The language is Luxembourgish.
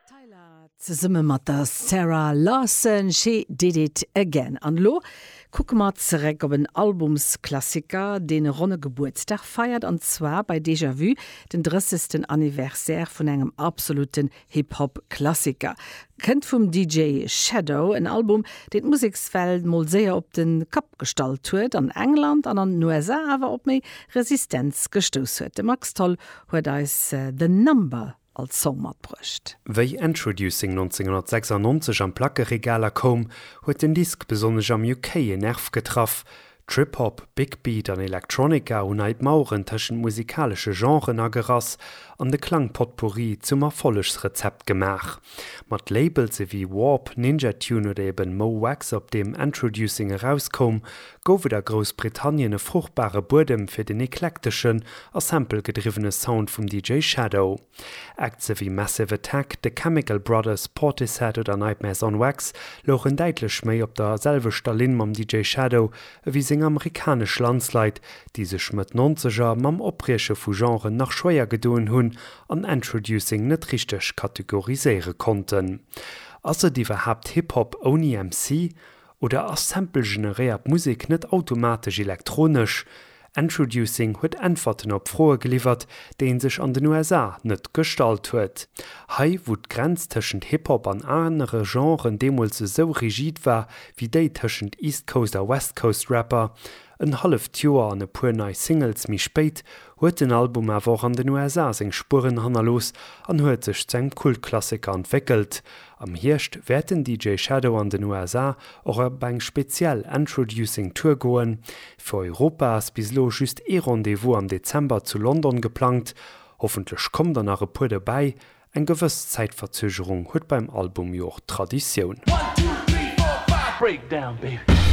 Tyla zesumme mat der Zara Larsson, She Did It Again. An elo kucke mer zeréck op en Albumsklassiker, deen e ronne Gebuertsdag feiert, an zwar bei Déjà Vu, den drëssegsten Anniversaire vun engem absolute Hip-Hop-Klassiker. Kënnt vum DJ Shadow, en Album, deen d'Musekswelt mol séier op de Kapp gestallt huet, an England an an den USA awer op méi Resistenz gestouss huet. De Max Tholl huet eis The Number als Song matbruecht. Wéi Endtroducing 1996 an d'Plackeregaler koum, huet den Disk besonnesch am UK en Nerv getraff. Trip Hop, Big Beat an Electronica hunn hei d'Maueren tëschent musikalesche Genren agerass an de Klang-Potpourri zum Erfollegsrezept gemaach. Mat Labels ewéi Warp, Ninja Tune oder eben Mo' Wax op deem Endtroducing erauskoum, gouf et a Groussbritannien e fruchtbare Buedem fir den eklekteschen a sample-gedriwwene Sound vum DJ Shadow. Acts ewéi Massive Attack, The Chemical Brothers, Portishead oder Nightmares on Wax louchen däitlech méi op der selwechter Linn mam DJ Shadow ewéi seng amerikanesch Landsleit, déi sech Mëtt Nonzeger mam Oprieche vu Genren nach schwéier gedoen hunn an Entroducing net richteg kategoriséiere konnten. Ass et iwwerhaapt Hip-Hop ouni MC? Oder ass samplegeneréiert Musek net automatesch elektronesch? Endtroducing huet Äntwerten op Froe geliwwert, déi ee sech an den USA net gestallt huet. Hei, wou d'Grenz tëschent Hip-Hop an anere Genren deemools esou rigid war wéi déi tëschent East Coast a West Coast Rapper en halleft Joer an e puer nei Singles méi spéit, huet den Album awer och an den USA seng Spueren hannerlooss an huet sech zu engem Kultklassiker entwéckelt. Am Hierscht wäert den DJ Shadow an den USA och op eng speziell Entroducing Tour goen. Fir Europa ass bis elo just ee Rendez-vous am Dezember zu London geplangt. Hoffentlech kommen der nach e puer dobäi, eng gewëss Zäitverzögerung huet beim Album jo och Traditioun.